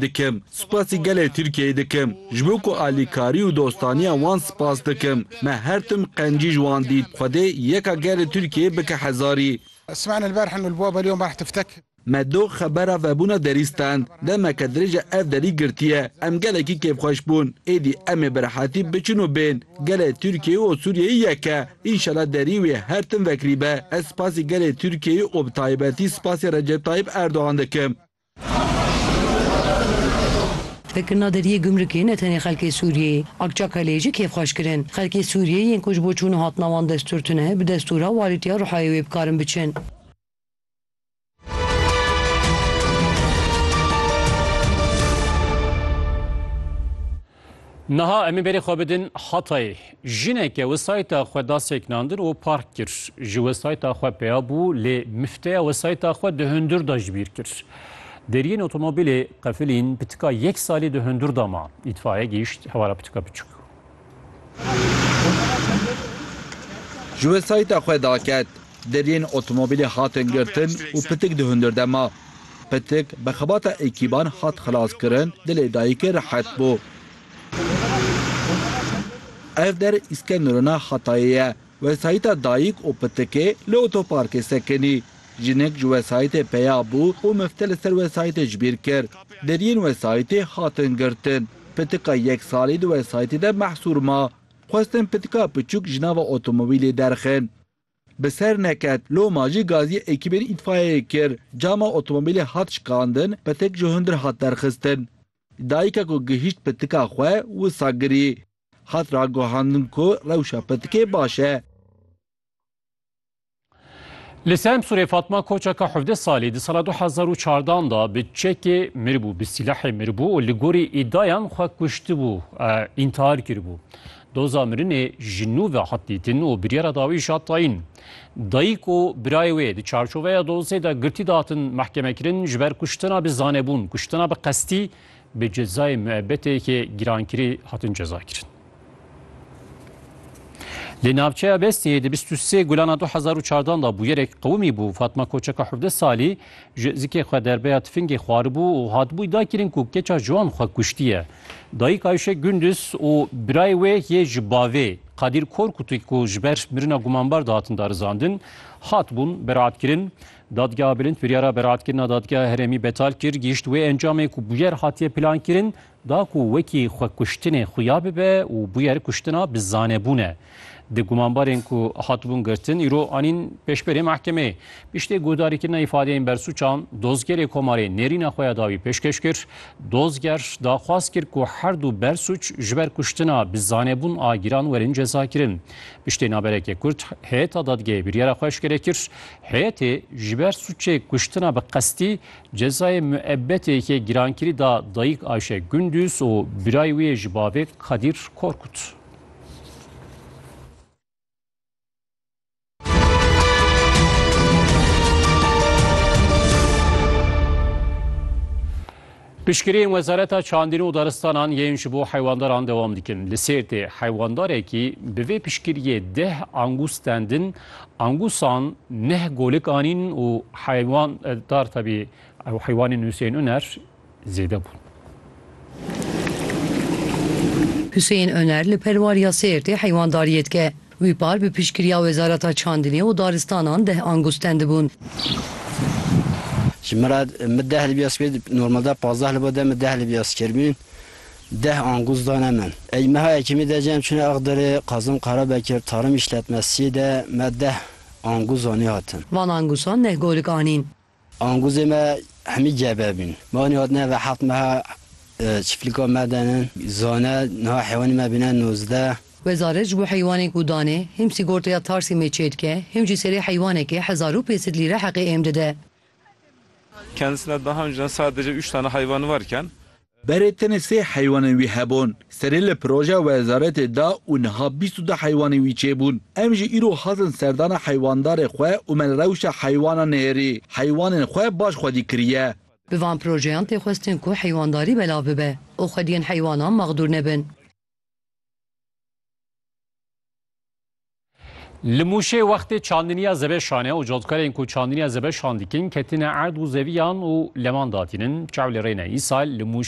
Dikim. Spasî gelê Tirkiyeyê dikim. Ji bo ku alîkarî û dostaniya wan spas dikim. Me her tim qencî ji wan dît. Xwedê yeka gelê Tirkiyeyê bike hezarî. Me doh xebera vebûna derî stend. Demeke dirêj e ev derî girtiye. Em gelekî kêfxweş bûn. Êdî em ê bi rehetî biçin û bên. Gelê Tirkiyeyê û Sûriyeyê yek e. Înşela derî wê her tim vekirî be. Ez spasî gelê Tirkiyeyê û bi taybetî spasî Recep Tayîp Erdogan dikim. Vekirina deriyê gumrukê ne tenê xelkê Sûriyeyê, Akçakaleyê jî kêf xweş kirin. Xelkê Sûriyeyê yên ku ji bo çûna hatina wan destûr tune, bi destûra walîtiya Ruhayê wê bikarin biçin. Niha em ê berê xwe bidin Hatayê. Jineke wesayta xwe da seknandin û park kir. Ji wesayta xwe peya bû lê mifteya wesayta xwe di hundir de ji bîr kir. Deriyên otomobîlê qefilîn pitika yek salî di hundir de ma. Îtfaiye gihîşt hewara pitika biçûk. Ji wesayta xwe da ket. Deriyên otomobilê hatin girtin û pitik di hundir de ma. Pitik bi xebata ekîban hat xelaskirin, dilê dayikê rehet bû. Ev der Îskenderûna Hatayê ye. Wesayîta dayik û pitikê li otoparkê sekinî. Jinik ji wesayîtê peya bû û mifte li ser wesayîtê ji bîr kir. Deriyên wesayîtê hatin girtin. Pitika yek salî di wesayîtê de mehsûr ma. Xwestin pitika piçûk ji nava otomobilê derxin. Bi ser neket, loma jî gaziyê ekîbên îtfayeyê kir. Cama otomobîlê hat şikandin, petek ji hundir hat derxistin. Dayika ku gihîşt pitika xwe wisa girî. Hat raguhandin ku rewşa pitikê baş e. Li Semsûrê Fatma Koçaka hevdeh salî di sala du hezar û çardan de bi çekê miribû, bi sîlahê miribû û li gorî îdayan xwe kuştibû, întihar kiribû. Doza mirinê ji nû ve hat dîtin û biryara dawîş hat tayîn. Dayîk û birayê wê di çarçoveya dozê de girtî datin mehkemekirin ji ber kuştina bi zanebûn, kuştina bi qestî bi cezayê muebetê yekê girankirî hatin cezakirin. Li navçeya Bestiyê di bîst û sê gulana du hezar û çardan de bûyerek qewimî bû. Fatma Koçeka hevdeh salî Ji zikê xwe derbeya tifingê xwaribû û hatibûy dakirin ku keça ji wan xwe kuştiye. Dayik Ayşe Gunduz û birayê wê yê ji bavê Kadîr Korkutî ku ji ber mirina gumanbar dihatin darizandin, hatibûn beraatkirin. Dadgeha Bilind biryara beraatkirina Dadgeha Herêmî betal kir, gihîşt wê encamê ku bûyer hatiye plankirin, da ku wekî xwekuştinê xuya bibe û bûyer kuştina bi zanebûn e. Di gumanbarên ku hatibûn girtin îro anîn pêşberê mehkemeyê. Piştî guhdarîkirina îfadeyên bersûçan, dozgerê Komarê nêrîna xwe ya dawî pêşkêş kir. Dozger daxwaz kir ku her du bersûç ji ber kuştina bi zanebûn a giran werin cezakirin. Piştî naberekê Kurd heyeta dadgehê biryara xwe eşkere kir. Heyetê ji ber sûcê kuştina bi qestî Cezayê muebbetê yekê girankirî da dayîk Ayşe Gunduz û birayê wî yê ji bavê Kadîr Korkut. Piştgiriyên Wezareta Çandîn û Daristanan yên ji bo heywandaran dewam dikin. Li Sêrtê heywandarekî bi vê piştgiriyê deh angûs stendin Angusan neh golik anîn û heywan dar tevî ew heywanên Huseyên Uner zêde bûn. Huseyên Uner li Perwariya Sêrtê heywandariyê dike. Wî par bi piştgiriya Wezareta Çandinê û Daristanan deh angûs tendibûn. Ji min re min deh libya spî normalde pazdeh li bo de min deh libya skêr bûn. Deh angûz dane min. Ey meha yekemî de cem çûne Axdirê, Kazim Karabekir, Tarım Îşlet me siyê de me deh angûz anî hatin. Van angûzan neh golik anîn. Angûzê me hemî gebe bîn. Me anî hatine eve heft meha çiflika me de ne zane niha heywanê me bîne nozdeh. Wezare ji bo heywanên ku dane him sîgorteya tarsî mê çê dike him jî serê heywanekê hezar û pêsed lîre heqê êm dide. Kendisine daha önceden sadece üç tane hayvanı varken Berê tenê sê heywanên wî hebûn. Serê li projeya wezaretê da û niha bîst û du heywanên wî çêbûn. Em jî îro hatin serdana heywandarê xwe û me li rewşa heywanan nêrî. Heywanên xwe baş xwedî kiriye. Bi van projeyan tê xwestin ku heywandarî belav bibe û xwediyên heywanan maxdûr nebin. Li Mûşê wextê çandiniya zebe şane û cotkarên ku çandiniya zebe şan dikin ketine erd û zeviyan û leman datînin. Çaw li rê ne. Îsal li Mûşê.